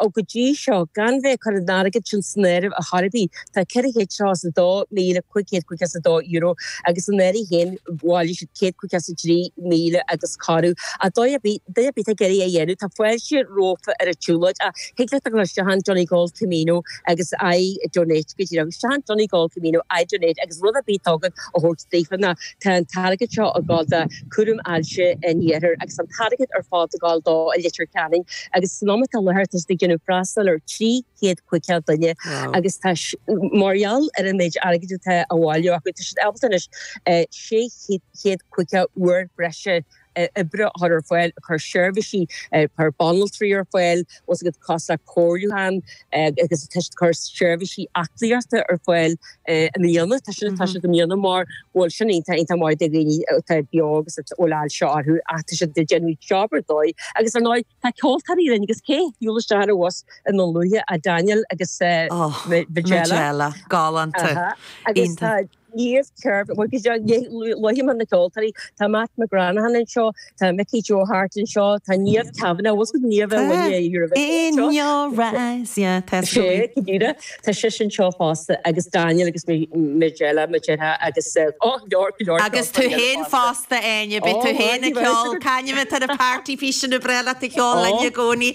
o Go dtí seo, gan bheith ag cur an airgid sin san áireamh a chor ar bith, tá ceithre chéad seasca is a dó míle cúig chéad caoga is a dó euro agus an fheirg féin bhailigh siad céad caoga is a trí míle agus corradh agus duine ar bith ag iarraidh é a dhéanamh tá fáilte rompu ar an tsiúlóid ach thig leat dul isteach chun Donegal Camino I donate go díreach isteach chun Donegal Camino I donate agus rud ar bith a thig leat a thabhairt daofa ná tá an t-airgead seo ag dul do cúram ailse an iarthair agus an t-airgead ar fad ag gabháil dó i Leitir Ceanainn agus san am atá i láthair tá siad ag déanamh freastal ar 300 500 duine agus mar gheall ar an méid airgid atá á bhailiú acu tá siad ábalta anois 600 500 uair breise oibre a chur ar fáil a chur seirbhísí carr banaltraí ar fáil os a gcuid cásanna comhairliúcháin agus tá siad ag cur seirbhísí aclaíochta ar fáil i mbliana. Tá siad atá siad i mbliana mar bhuel sin iontach iontach maith do dhaoine atá beo agus a bhfuil ailse orthu ach tá siad ag déanamh job ar dóigh agus ar ndóigh tá ceoltóirí linn agus cé shiúil isteach ar an bhus i nDún Lúiche ach Daniel agus Majella. Majella, galánta, iontach. Níor cheart go luafainn na ceoltóirí, tá Matt McGranaghan anseo, tá Mickey Joe Harte anseo, tá Niamh Kavanagh, bhfuil a fhios agat Niamh a bhain an Eurovision anseo? Sea go díreach, tá sise anseo fosta agus Daniel agus Majella Majella agus go leor go leor. Agus tú féin fosta Áine, beidh tú féin ag ceol, cá hainm atá ar an party piece sin is breá leat a cheol linn i gcónaí.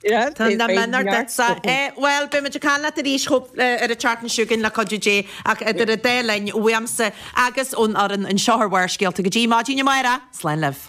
Tá na mionúir ag neart sa chomhad. Bhuel, beimid ag caint leat arís ar an tseachtain seo chugainn, le cuidiú Dé, ach idir an dá linn, uaimse agus ón fhoireann anseo ar Bharrscéalta go dtí maidin amárach, slán libh.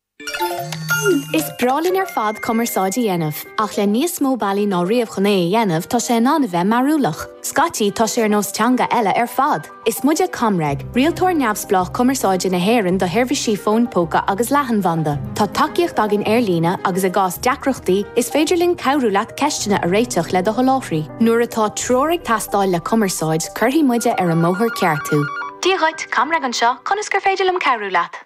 Is breá linn ar fad cumarsáid a dhéanamh, ach le níos mó bealaí ná riamh chun é a dhéanamh tá sé in ann a bheith mearúlach. Scaití tá sé ar nós teanga eile ar fad! Is muid ag ComReg, rialtóir neamhspleách cumarsáide na hÉireann do sheirbhísí fóin póca agus leathanbhanda. Tá tacaíocht againn ar líne agus i gcás deacrachtaí is féidir linn cabhrú leat ceisteanna a réiteach le do sholáthraí. Nuair atá treoir ag teastáil le cumarsáid, cuirfidh muide ar an mbóthar ceart thú. Dia dhuit, ComReg anseo, conas gur féidir linn cabhrú leat?